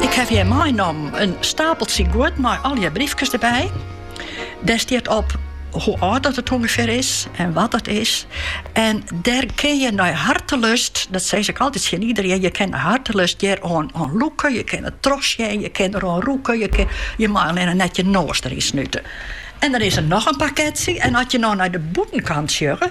Ik heb hjir meinommen in stapeltsje guod mei allegear briefkes derby. Dêr stiet op hoe âld dat it ûngefear is en wat dat is. En dêr kin je nei hartelust, dat sis ik altyd tsjin iedereen, je kin nei hartelust hjir oan, oan lûke, je kin it trochsjen, je kin der oan rûke, je, kin, je mei allinne net je noas deryn snute. En dan is der noch in pakketsje en as je no nei de bûtenkant sjogge,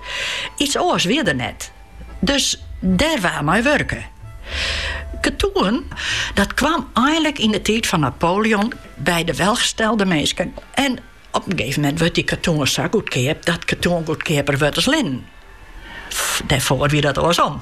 Iets oars wie der net, dus dêr waard mei wurke. Ketoen, dat kwam einlik yn de tiid fan Napoleon by de welgestelde minsken en op in gegeven moment wurdt dy ketoen sa goedkeap dat ketoen goedkeaper wurdt as linnen. Dêrfoar wie dat oarsom.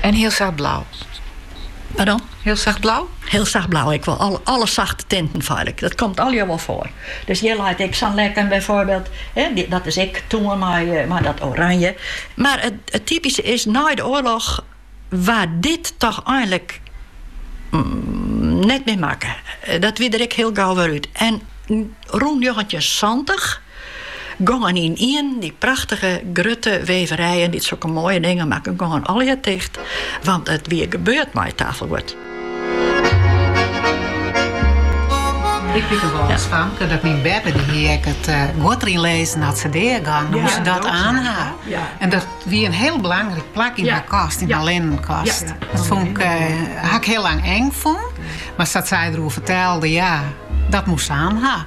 En hiel sacht blau. Pardon? Hiel sacht blau? Hiel sacht blau, ek wol alle sachte tinten feitlik. Dat komt allegear wol foar. Dus hjir leit ek sa'n lekken byfoarbyld. Dat is ek toen mei dat oranje. Mar it typyske is, nei de oarloch waard dit toch einlik net mear makke. Dat wie der ek hiel gau wer út. En rûn njoggentjin santich. Gongen ynienen dy prachtige, grutte weverijen dy't sokke moaie dingen makken, gongen allegear ticht, want it wie gebeurd mei it tafelguod. Ik wit der wol fan dat myn beppe dy hie ek it guod deryn lizzen as se dea gong, dan moast se dat aan ha. En dat wie in hiel belangryk plak yn har kast, yn har linnenkast. Dat fûn ik, ha ik hiel lang eng fûn, mar sa't sy der oer fertelde, ja, dat moast se aan ha.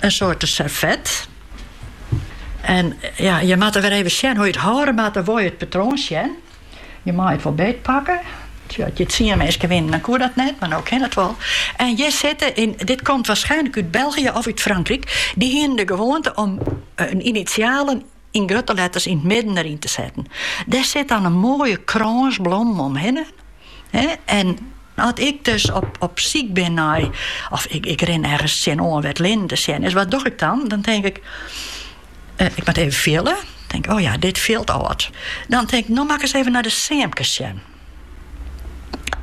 in soarte servet. En ja, je moatte wer even sjen hoe je it hâlde moatte, wol je it patroon sjen. Je mei it wol beet pakke. Tja, as hjir tsien minsken wiene, dan koe dat net, mar no kin it wol. En hjir sitte, en dit komt waarschijnlijk út België of út Frankrijk, dy hienen de gewoante om eh, in initialen yn grutte letters yn it midden deryn te setten. Dêr sit dan in moaie krâns blommen omhinne. En as ik dus op, op syk bin nei, of ik, ik rin ergens tsjinoan wêr't linnen te sjen is, wat doch ik dan? Dan tink ik, eh, ik moat even fiele. Tink, oh ja, dit fielt âld. Dan tink ik, no moat ik ris even nei de seamkes sjen.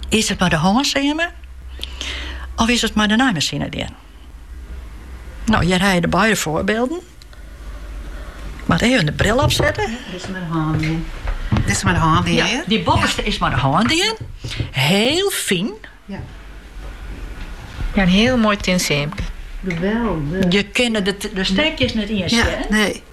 Is it mei de hân seame? Of is it mei de naaimasine dien? No, hjir ha je de beide foarbylden. Ik moat even de bril opsette. Ja, dit is mei de hân dien. Dit is mei de hân dien, ja, dy boppeste is mei de hân dien. Hiel fyn. Ja. Ja, in hiel moai tin seamke. Geweldig. Je kinne de, de stekjes net iens, ja, nee.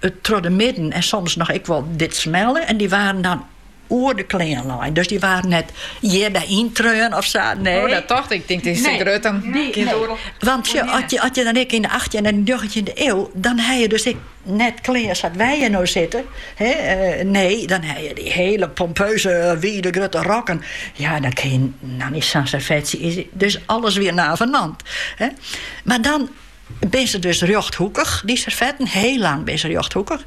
It troch de midden en soms noch ek wol dit smelle en dy waarden dan oer de klean lein. Dus dy waarden net hjirby yntreaun of sa. Nee. Oh, dat tocht ik. Tink, dit is te grut, dan nee, kin nee. Want sjo, oh, as, je, as je dan ek yn de 18e en de 19e eeuw, dan ha je dus ek net klean sa't wy hjir no sitte. Hè? Eh, nee, dan ha je dy hiele pompeuze, wide, grutte rokken. Ja, dan kin je no net sa'n serfetsje. Dus alles wer navenant. Hè? Mar dan Binne se dus rjochthoekich, dy serfetten, hiel lang binne se rjochthoekich.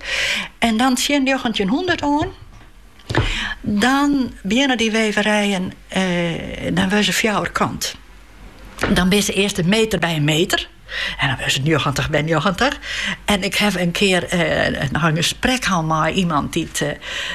En dan tsjin njoggentjinhûndert oan, dan begjinne dy weverijen, eh, dan wurde se fjouwerkant. Dan binne se earst in meter by in meter. En dan wurde se njoggentich by njoggentich. En ik haw in kear eh, noch in gesprek hân mei iemand dy't eh,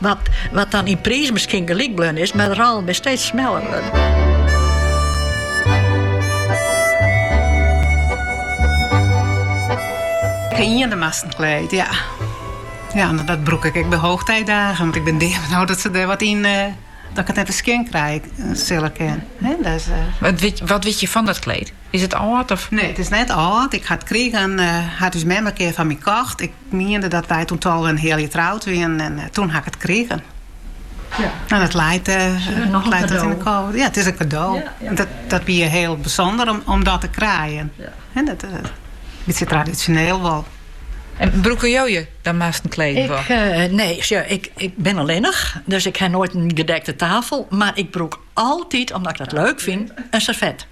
Wat wat dan yn priis miskien gelyk bleaun is, mar de rôlen binne steeds smeller wurden. Ien damasten kleed, ja. Ja, mar dat brûk ik ek by hoogtijdagen. Want ik bin deabenaud dat se der wat yn... Uh, dat ik it net wer skjin krij, eh, sille kinne. Dus, uh. wat, wit, wat wit je fan dat kleed? Is it âld of? Nee, it is net âld. Ik ha it krigen hat ús mem in kear foar my kocht. Ik miende dat wy toen tolve en in heal jier troud wienen en toen ha ik it krigen. Ja. En it leit, uh, noch leit dat yn de kou. Ja, it is in kado. dat, dat wie hiel bysûnder om, om dat te krijen. En dat, uh, in bytsje tradisjoneel wol. En brûke jo je dan mar in kleed en ik, eh, nee, ja, ik, ik bin allinnich, dus ik ha noait in gedekte tafel. Mar ik brûk altyd, omdat ik dat leuk fyn, in serfet.